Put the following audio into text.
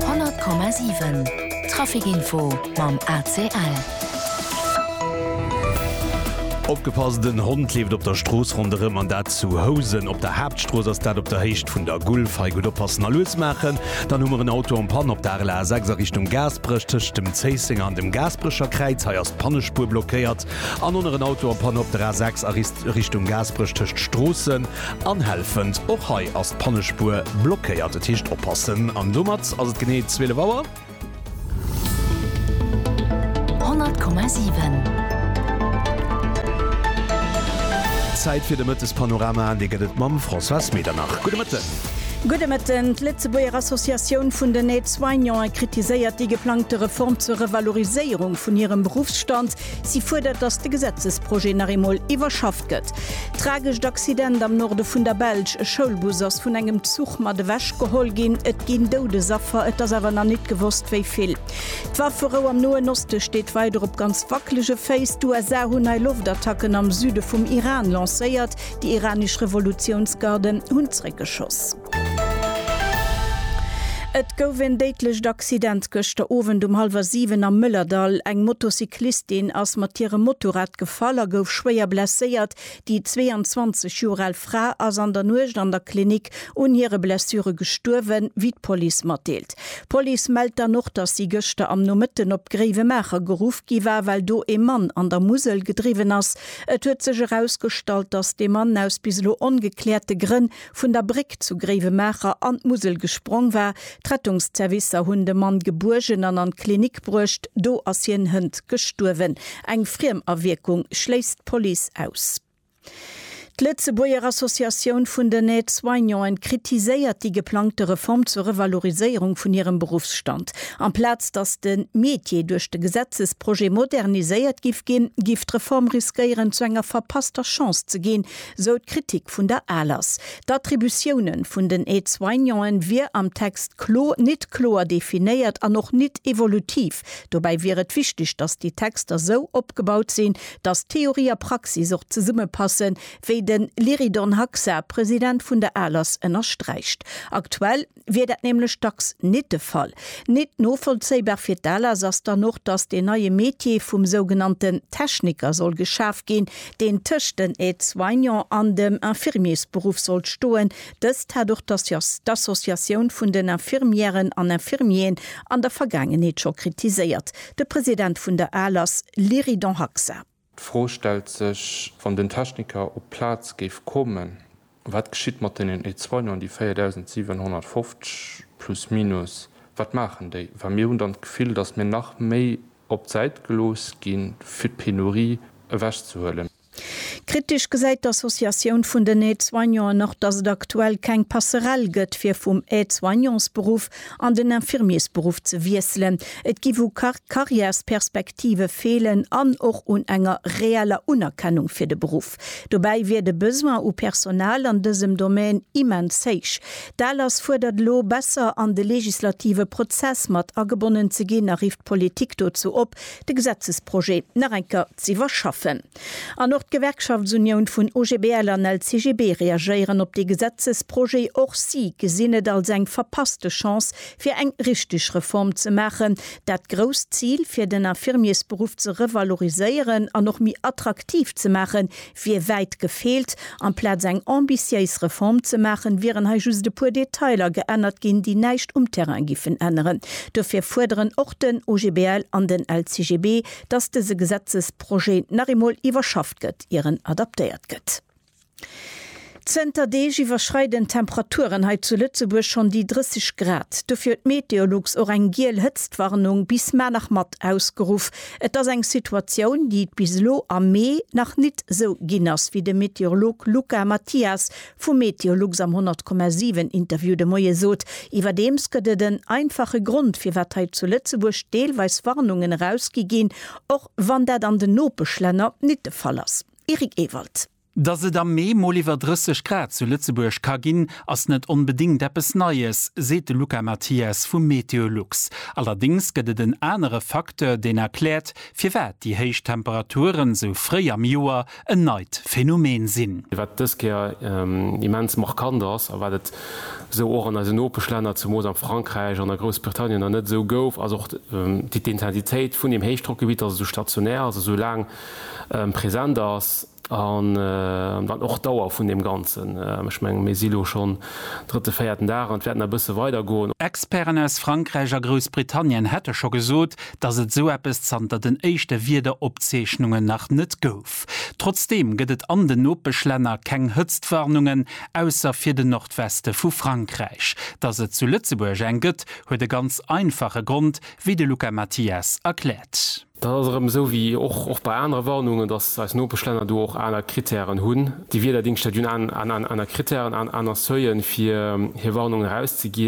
100,7 Trafic Info mam ACL. Opgepasst, en Hond leeft op der Strooss ronderëm an dat zu Housen. Op der Haaptstrooss ass dat op der Héicht vun der Gulf. Hei gutt oppassen a lues maachen. Dann hu mer en Auto en Panne op der RLR 6 a Richtung Gaasperech tëscht dem Zéissenger an dem Gaasperecher Kräiz. Hei ass d'Pannespuer blockéiert. An oner en Auto en Panne op der A 6 a Richtung Gaasperech tëscht Stroossen. Anhellfend, Och hei ass d'Pannespuer blockéiert, et heescht oppassen. An domat ass et genee 12 Auer. 100,7. Zäit fir de Mëttespanorama, dee gëtt et mam Françoise Medernach. Gudde Mëtten. Gudde Mëtten. D'Lëtzebuerger Associatioun vun den Aide-soignanten kritiséiert déi geplangte Reform zur Revaloriséierung vun hirem Beruffsstand. Si fuerdert, datt de Gesetzesprojet nach eemol iwwerschafft gëtt. Tragescht Accident am Norde vun der Belsch, E Schoulbus ass vun engem Zuch mat ewech geholl ginn. Et ginn Doudesaffer, et ass awer nach nit gewosst wéi vill. D'Wafferou am Noen Oste steet weider op ganz wackelege Féiss. D'USA hunn nei Loftattacken am Süde vum Iran lancéiert. Déi iranesch Revolutiounsgarden hunn zréckgeschoss. Et gouf en déidlecht Accident gëschter Owend um hallwer 7 am Mëllerdall. Eng Motocyclistin ass mat hirem Motorrad gefall a gouf schwéier blesséiert. Déi 22 Joer al Fra ass an der Nuecht an der Klinik un hire Blessure gestuerwen, wéi d'Police matdeelt. D'Police mellt dann och, dass si gëschter am Nomëtten op Gréiwemaacher geruff gi war, well do ee Mann an der Musel gedriwwen ass. Et huet sech erausgestallt, dass dee Mann aus bis elo ongekläerte Grënn vun der Bréck zu Gréiwemaacher an d'Musel gesprong war. D'Rettungsservicer hunn de Mann gebuergen an an d'Klinik bruecht. Do ass hien hënt gestuerwen. Eng Friemawierkung schléisst d'Police aus. D'Lëtzebuerger Associatioun vun den Aide-soignanten kritiséiert déi geplangte Reform zur Revaloriséierung vun hirem Beruffsstand. Amplaz datt de Métier duerch de Gesetzesprojet moderniséiert giff ginn, giff d'Reform riskéieren, zu enger verpasster Chance ze ginn, Sou d'Kritik vun der ALAS. D'Attributioune vun den Aide-soignanten wier am Text klo nit kloer definéiert an och nit evolutiv. Dobäi wier et wichteg, datt déi Texter sou opgebaut sinn, datt Theorie a Praxis och zesumme passen, wéi den Lyridon Haxa, President vun der ALAS, ënnersträicht. Aktuell. wier dat nämlech dacks nit de Fall. Nit novollzéibar fir d'ALAS ass dann och, datt deen neie Metier vum sougenannten Techniker soll geschaf ginn, deen tëscht den Aide-soignant an dem Infirmiersberuff sollt stoen. Dëst hat och d'Associatioun vun den Infirmièren an Infirmieren an der Vergaangenheet scho kritiséiert. De President vun der ALAS, Lyridon Haksah. D'Fro stellt sech, Wann den Techniker op d'Plaz géif kommen, wat geschitt mat deenen Ézeunen, déi 4.750 plus minus? Wat maachen déi? Well mir hunn dann d'Gefill, datt mir nach méi op d'Säit gelooss gi fir d'Penurie ewechzehuelen. Kritesch gesäit d'Associatioun vun den Aide-soignanten och, datt et aktuell keng Passerelle gëtt, fir vum Aide-soignantsberuff an den Infirmiersberuff ze wiesselen. Et giff u Carrièresperspektive feelen an och un enger reeller Unerkennung fir de Beruff. Dobäi wier de Besoin u Personal an dësem Domän immens héich. D'ALAS fuerdert elo, besser an de legislative Prozess mat agebonnen ze ginn a rifft d'Politik dozou op, de Gesetzesprojet nach eng Kéier z'iwwerschaffen. An och d'Gewerkschaftsunioun vun OGBL an LCGB reagéieren op dee Gesetzesprojet. Och si gesinn et als eng verpasste Chance fir eng richteg Reform ze maachen. Dat grousst Zil, fir den Infirmiersberuff ze revaloriséieren an och méi attraktiv ze maachen, wier wäit gefeelt. Amplaz eng ambitiéis Reform ze maachen, wieren hei just e puer Detailer geännert ginn, déi näischt um Terrain giffen änneren. Dofir fuerderen och den OGBL an den LCGB, dass dese Gesetzesprojet nach eemol iwwerschafft gëtt, ier en adaptéiert gëtt. Zënter Deeg iwwerschreiden d'Temperaturen hei zu Lëtzebuerg schonn déi 30 Grad. Dofir huet Meteolux och eng giel Hëtztwarnung bis Manach mat ausgeruff. Et ass eng Situatioun, déi et bis elo am Mee nach nit esou ginn ass, wéi de Meteorolog Luca Mathias Vu Meteolux am 100,7 Interview de Moie sot. Iwwerdeems gëtt et en einfache Grond, firwat hei zu Lëtzebuerg deelweis Warnungen erausgi ginn, och wann dat an den Nopeschlänner nit de Fall ass. Eric Ewald. Dass et am Mee mol iwwer 30 Grad zu Lëtzebuerg ka ginn, ass net onbedéngt eppes Neies, seet de Luca Mathias vu Meteolux. Allerdéngs gëtt et en anere Facteur, deen erkläert, firwat déi héich Temperaturen sou fréi am Joer en neit Phänomen sinn. Wat dës Kéier immens markant ass, a wat et esou och an eisen Nopeschlänner, zemoos am Frankräich an a Groussbritannien nach net esou gouf, ass och d'Intensitéit vun deem Héichdrockgebitt, datt et esou stationär ass, esou laang present ass, an dann och d'Dauer vun deem Ganzen. Ech mengen, mir si lo schonn drëtte, véierten Dag an et wäert nach e bësse weidergoen. Experten aus Frankräich a Groussbritannien hätte scho gesot, dass et esou eppes zanter den éischte Wiederopzeechnungen nach net gouf. Trotzdeem gëtt et an den Nopeschlänner keng Hëtztwarnungen, ausser fir de Nordweste vu Frankräich. Dass et zu Lëtzebuerg eng gëtt, huet e ganz einfache Grond, wéi de Luca Mathias erkläert. Dat ass erëm esou wéi och bei anere Warnungen, dass eis Nopeschlänner do och aner Krittären hunn. Déi Wiederdingschter hunn aner Krittären, aner Seuilen, fir hir Warnungen erauszeginn.